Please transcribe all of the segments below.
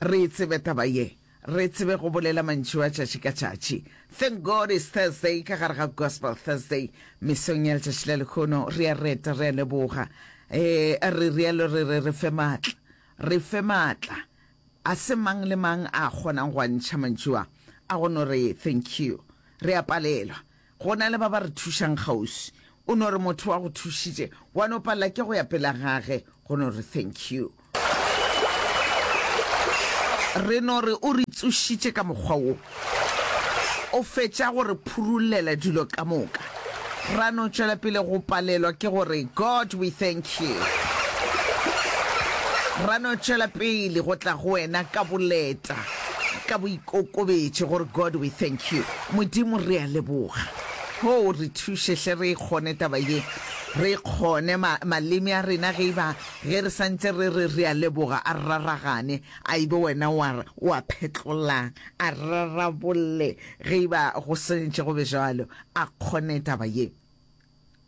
Re e tsebe taba ye. Re tsebe go bolela mantšu a tšatši ka tšatši. Thank God it's Thursday ka gare ga Gospel Thursday. Mesong ya letšatši la lekhono re a reta, re a leboga. Ee, re rialo re re re fe matla. Re fe matla. A se mang le mang a kgonang go a ntšha mantšu a, a go no re thank you. Re a palelwa. Go na le ba ba re thušang kgauswi. O no re motho wa go thušitše, wa no palela ke go ya pela gage, go no re thank you. Re no re o re tsošitše ka mokgwa wo. O fetša go re phurulela dilo ka moka, ra no tšwela pele go palelwa ke go re God we thank you. Ra no tšwela pele go tla go wena ka boleta, ka boikokobetše go re God we thank you. Modimo re a leboga. Hoo re thuše hle re e kgone taba ye, re e kgone. Ma, maleme a rena ge e ba, ge re sa ntše re re re a leboga, a raragane, a e be wena o a, o a phetlolang, a rarabolle ge e ba go swanetše go be bjalo, a kgone taba ye.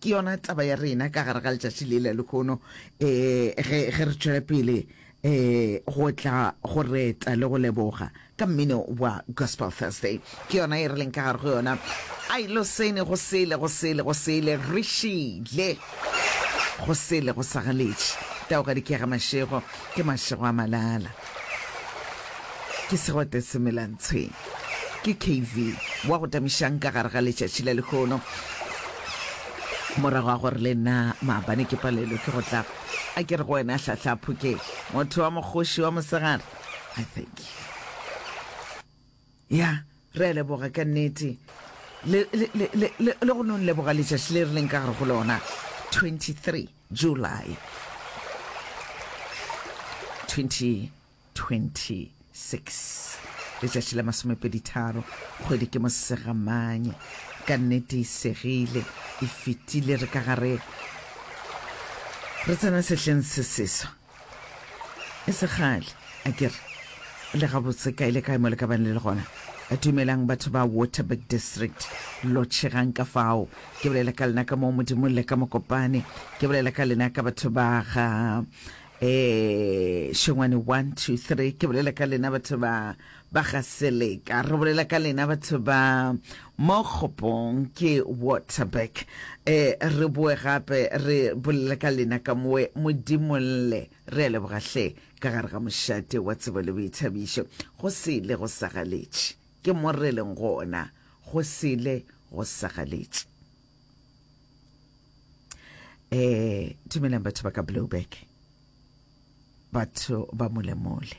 Ke yona taba ya rena ka gare ga letšatši le la lekhono um ge re tšwela pele um go tla go reta le go leboga ka mmino wa gospel thursday ke yona e re leng ka gare go yona a ilo sene go sele go sele go sele re šile go sele go sagaletše tao ga dikega mašego ke mašego a malala Ke segwete se melang tshwene. Ke KV wa go tamišang ka gare ga letšatši la lehono. Morago a gore le nna maabane ke palelwe ke go tla. A ke re go wena hlahla phokeng. Motho wa mokgoši wa mosegare. I thank you. Ya, re a leboga, ka nnete. Le, le, le, le, le, le go nong leboga letšatši le re leng ka gare go lona, 23 July 2026, letšatši la masomepeditharo, kgwedi ke Mosegamanye. Ka nnete e segile, e fetile, re ka gare, re tsena sehleng se seswa. E se kgale, a ke re, le gabotse kae le kae mo le ka bang le le gona. Dumelang, batho ba Waterberg District, lo tšhegang ka fao. Ke bolela ka lena ka moo, Modimo, le ka Mokopane. Ke bolela ka lena ka batho ba ga eh, Šengwane, one, two, three. Ke bolela ka lena batho ba Ba ga Seleka, re bolela ka lena batho ba mo kgopong, ke Waterberg. E, re boe gape re bolele ka lena ka mowe, Modimo lle. Re a leboga hle, ka gare ga mošate wa tsebo le boithabišo, go sele go sa galetše. Ke mo re leng gona, go sele go sa galetše. E, dumelang batho ba ka Blouberg, batho ba molemole.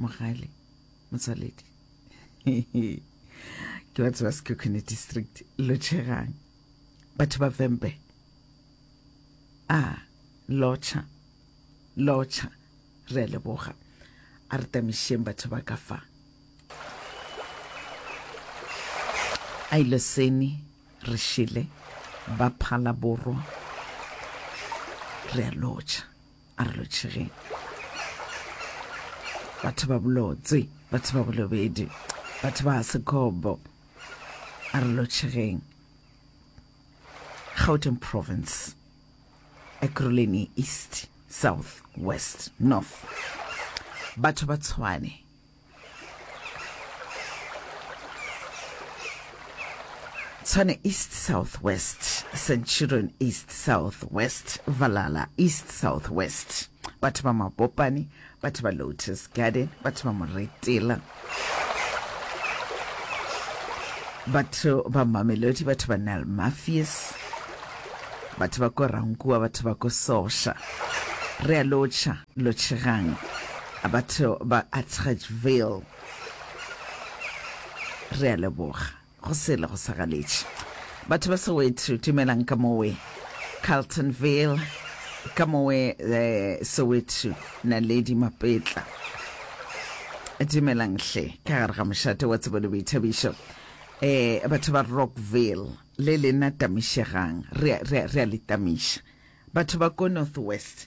mogale motswaledi ke batho ba sekekone district lotšhegang batho ba vembe a ah, lotšha lotšha re a leboga a re tamišeng batho ba ka fa a ile seni re šele ba phala borwa re a lotšha a re lotšhegeng batho ba bolotse batho ba bolobedi batho ba sekobo a re lotšhegeng gauteng province ekuruleni east south west north batho ba tshwane Tshwane East South West, Centurion East South West, Valala East South West, batho ba Mabopane, batho ba Lotus Garden, batho ba Moretela, batho ba Mamelodi, batho ba Nile Mafies, batho ba ko Rankua, batho ba ko Sosha. Re a lotšha. Lotšhegang, batho ba Atteridgeville re a leboga. Go sele go sa galetše. Batho ba Soweto, dumelang ka mowe. Carltonville, ka mowe eh, Soweto, Naledi Mapetla. Dumelang hle, ka gare ga mošate wa tsebo le boithabišo. Eh, batho ba Rockville, le lena tamišegang, re a- re a- re a le tamiša. Batho ba ko Northwest,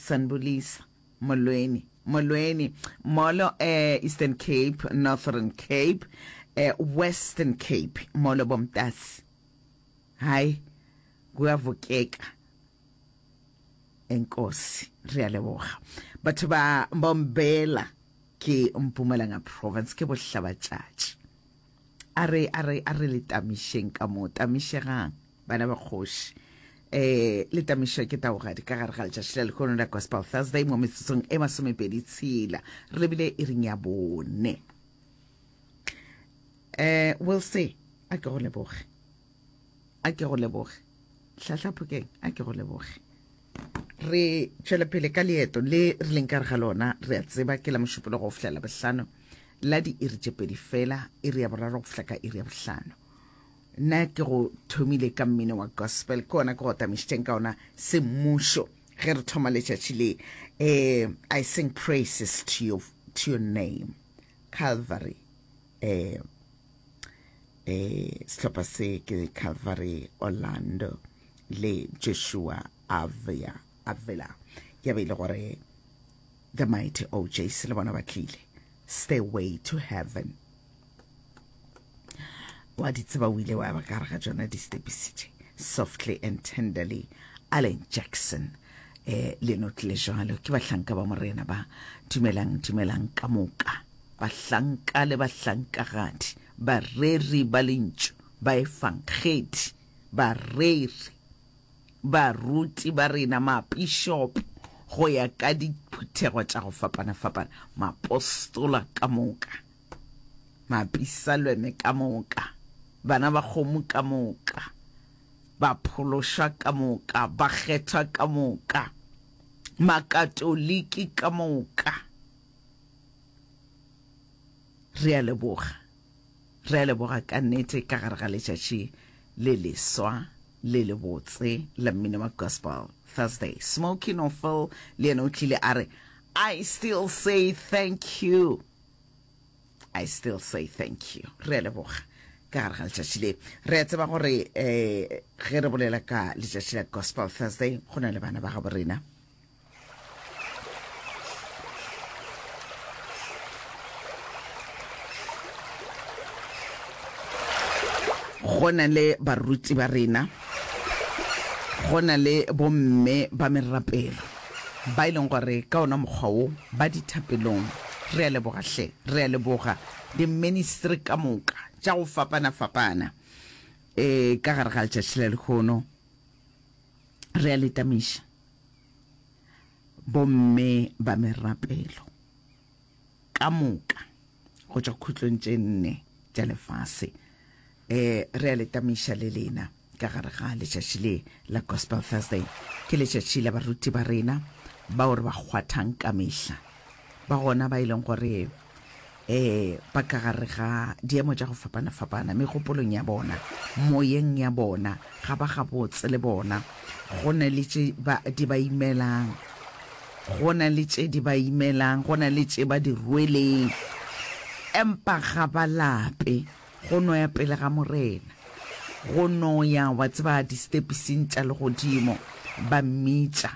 Sanbulisa, Molweni, Molweni, Molo e, Eastern Cape, Northern Cape, e, Western Cape, Molo bomtasi. Hayi, kuyavukeka. Enkosi, re a leboga. Batho ba Mbombela ke Mpumalanga Province, ke Bohlabatšatši. a re a re a re le tamišeng ka mo tamišegang bana ba kgoši eh le tamišwa ke taogadi ka gare ga letšatši la lekgono la gospel thursday mo metsotsong e masomepedi tshela re lebile e reng ya bone eh will se a ke go leboge a ke go leboge hlahla phokeng a ke go leboge re tšwele pele ka leeto le re leng ka re ga lona re a tseba ke la mošupolo go fihlela bohlano la diiri tše pedi fela iri ya boraro go fihla ka iri ya bohlano nna ke go thomile ka mmino wa gospel ke ona ke go tamišitšeng ka ona semmušo ge re thoma letšatši le um i sing praises to your, to your name calvary um e sehlopha se ke calvary orlando le joshua avia avila ya be e le gore the mighty ojs le bona ba tlile stairway to heaven wa di tseba o ile wa ba ka ga tsona di stepisitše softly and tenderly allen jackson eh le no tlile jalo ke bahlanka ba morena ba dumelang dumelang ka moka bahlanka le bahlankagadi Bareri ba Lentšu, baefangedi, bareri, baruti ba rena, mapišopo go ya ka diphuthego tša go fapana-fapana, mapostola ka moka, mapisalweme ka moka, bana ba kgomo ka moka, baphološwa ka moka, bakgethwa ka moka, Makatoliki ka moka. Re a leboga. Re a leboga ka nnete ka gare ga letšatši le leswa le le botse la mmino wa Gospel Thursday. Smokey No Phil le yena o tlile a re, I still say thank you. I still say thank you. Re a leboga ka gare ga letšatši le. Re a tseba gore eh, ge re bolela ka letšatši la Gospel Thursday go na le bana ba gabo rena. go na le baruti ba rena go na le bomme ba merapelo ba e leng gore ka ona mokgwa wo ba dithapelong re a leboga hle re a leboga di-ministry ka moka tša go fapana-fapana um ka gare ga letšatši la lekgono re a letamiša Bomme ba merapelo ka moka go tšwa khutlong tše nne tša lefase um re a le tamiša le lena ka gare ga letšatši le la Gospel Thursday. Ke letšatši la baruti ba rena bao re ba kgwathang ka mehla, ba gona ba e leng gore eh ba ka gare ga diemo tša go fapana-fapana megopolong ya bona moyeng ya bona ga ba gabotse le bona go na le tše di ba imelang go na le tše di ba imelang go na le tše ba di rweleng empa ga ba lape Go no ya pele ga Morena. Go no ya, wa tseba, distepising tša legodimo, ba mmitša,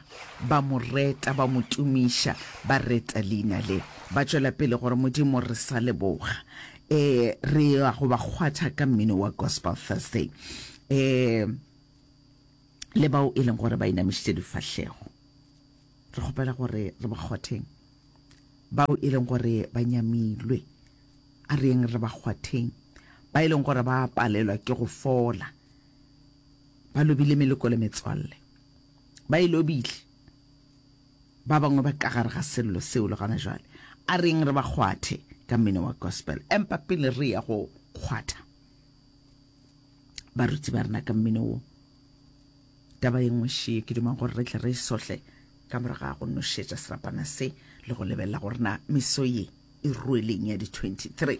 ba Mo reta, ba Mo tumiša, ba reta Leina le, ba tšwela pele gore, Modimo, re sa leboga. E, re ya go ba kgwatha ka mmino wa Gospel Thursday. E, le bao e leng gore ba inamišitše difahlego, re kgopela gore re ba kgwatheng, bao e leng gore ba nyamilwe. A reeng re ba kgwatheng ba e leng gore ba a palelwa ke go fola, ba lobile meleko le metswalle, ba e lobile ba bangwe ba ka gare ga sello seo le gona jwale. A reeng re ba kgwathe ka mmino wa gospel. Empa pele re ya go kgwatha baruti ba rena ka mmino wo, Taba ye nngwe šie ke duma gore re tle re e sohle ka morago ga go nošetša serapana se le go lebelela gore na meso ye e rueleng ya di-23.